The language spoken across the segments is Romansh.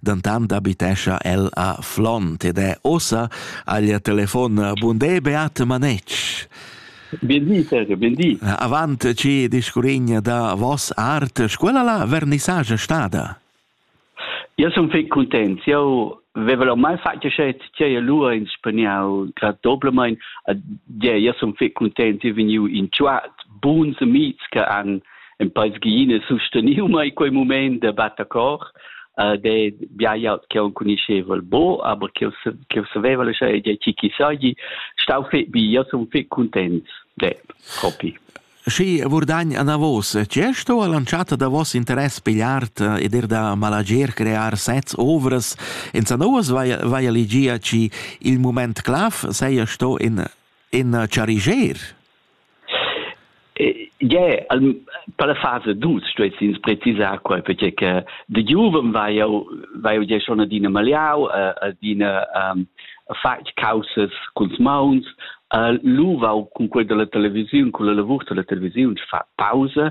dentant abitescha el a Flont ed è ossa al telefon Bundé Beat Manetsch. Bel Sergio, bel di. Avant ci discurigna da vos art, scuola la vernissage stada? Io sun fec content. Io veva ormai fatg schet tgei lura ins spaniau grad doblemain. A de io sun fec content e vegniu in tuat buns amics che han en pais giine susteniu mai quei moment de battacor uh, de bia jaut che on cuniscevel bo aber che che saveva lascia de chi chi sai stau fe bi ja son fe contents de propi Schi Vurdagn anavos gest o lanciata da vos interess pigliart eh, ed er da malager crear sets ovras in sanoas vai vai ligia ci il moment claf sei sto in in chariger Gie, per la fasa dus stuess ins precisar quei perché che de giuven vai jau vai jau gie schon adina maliau adina fatg caussas culs mauns lu vau cun quel dalla televisiun con la lavur dalla televisiun fa pausa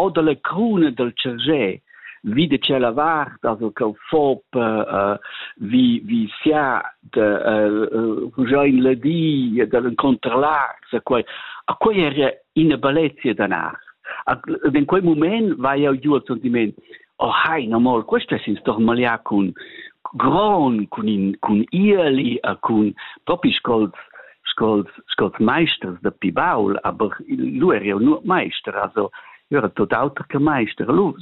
O dalla cruna dal tschargè vi da tschella vart as ho cau fop uh, vi vi sia da uh, rugiain la di da l'incontralart a quai a quai era ina bellezia da nar in quei mument vai jau giu al sentiment oh hai no mol questa sin stormalia cun gron cun in cun ieli a cun propi scols scols scols meisters de pibaul aber lu er jo nur meister also era tot auter che meister lu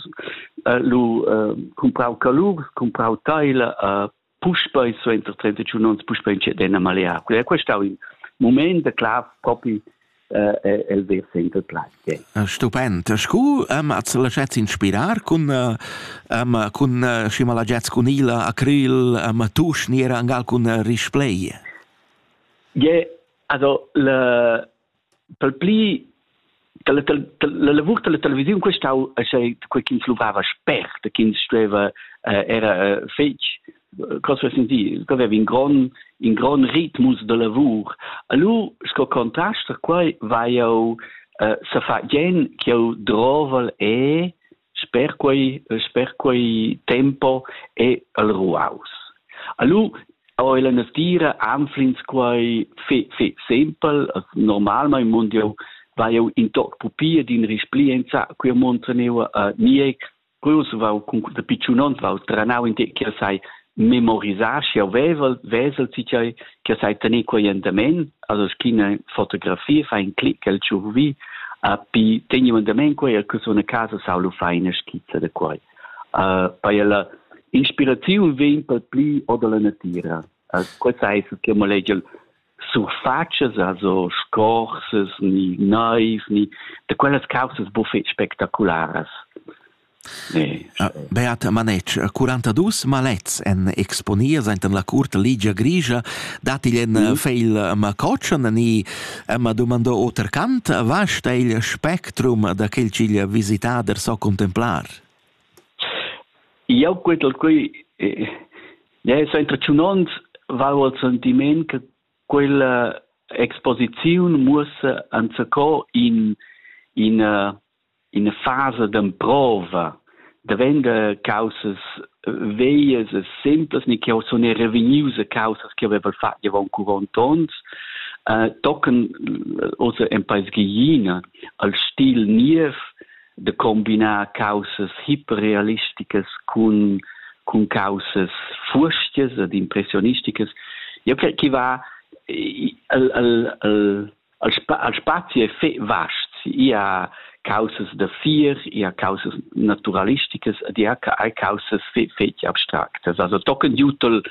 uh, lu uh, comprau calurs comprau teila uh, puspei suenter 31 onns puspei inceden a malear. Quella è stau in moment da clav propi eh, el ver center plazia. Stupend. Scu am at laschez inspirar cun am cun Schimalagets cun Ila acryl am tusch niera angal cun Risplay? Je, also le pel pli che la, la lavur della televisiun questau sei quei ch'ins luvava spert ch'ins stueva eh, era eh, fetg cosa senti che aveva in gran in gran ritmus de lavur allora sco contrast quai vai eu eh, sa fa gen che eu drovel e Sper quei e sper quei tempo ei el ruaus. Allu ho ella natira anflins quai fe, fe sempel, as normalmaing mund jeu vai jeu in toc pupi ed in risplienza, quia monta neu a Nieck. Quels vau cun da picciunond vau tranau in tec ch'el sai memorisar schi jau vevel vesel ti tgei che sai tener quei endament also schina fotografia fa in click el tschurvi a pi tegni un endament quei e cus una casa sau lu fa ina skizza de quei uh, bei la inspiraziun vegn per pli o dalla natira uh, quei sai che mo legel surfatschas, also scorsas ni neivs ni da quellas caussas buc fetg spectacularas. Nee. Ah, Beata Manetsch, 42 malets en exponias enten la curta ligia grigia, dat igl en mm. feil macotschen ni ma domando oter cant, vasta il spectrum da quel ch'igl visitader so contemplar? Jau quetel qui eh, Ne, so intercunond val el sentiment che quella exposiziun muossa enzaco in in in fase d'emprova davenda causas veias e simplas ni che sono revenius a causas che aveva fatto avon 40 onns uh, tocan also en paes gigina al stil niev da combinar caussas hiperrealisticas cun cun caussas furstias ed impressionisticas. Eu cre chi va al, al, al, al spazi è fe vast. Ia caussas da fir, ia caussas naturalisticas ed ia hai caussas fe fetg abstractas. Also tochen giutel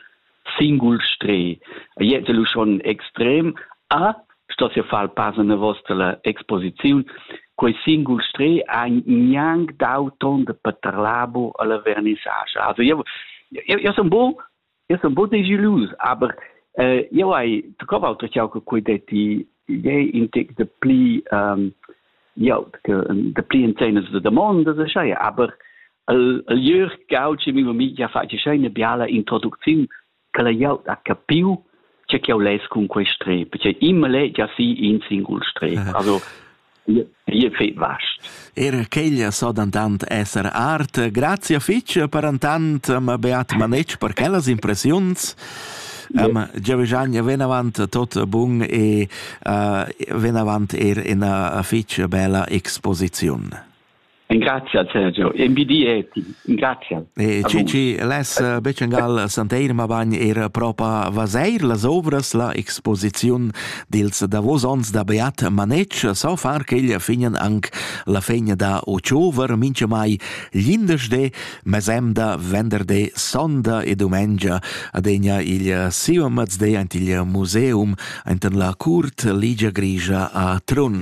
singul stre jetzt lu schon extrem a sto se far pass in vostra exposiziun quei singul stre ha gnang dau ton de paterlabo alla vernissage also io io io son bo io son bo de gelus aber äh, io hai tu cova altro che quei detti idee in tec de pli ähm, ja de pli in zene de domanda se schei aber el el jür gaut che mi mi ja fa che scheine biala introducziun che la ja ha capiu che che les cun quei strep che immer le ja si in singul strep also Ihr feit vascht. Er quella so dantant esser art. Grazie fitch per antant, ma beat manetsch per quellas impressiuns. Um, Giaviggian ven avant tot bun e uh, ven avant er ina fitch bella exposiziun. Grazie Sergio, MBD eti, grazie. E ci, ci les eh, Beccengal Santeir ma bagn er propa vaseir las obras la exposiziun dils davos ons da Beat Manec, so far che il finen anc la fegna da Ochover, mince mai, l'indes de mesemda, venderde, sonda e dumengia adegna il siu mazde ant il museum ant la curt ligia grigia a Trun.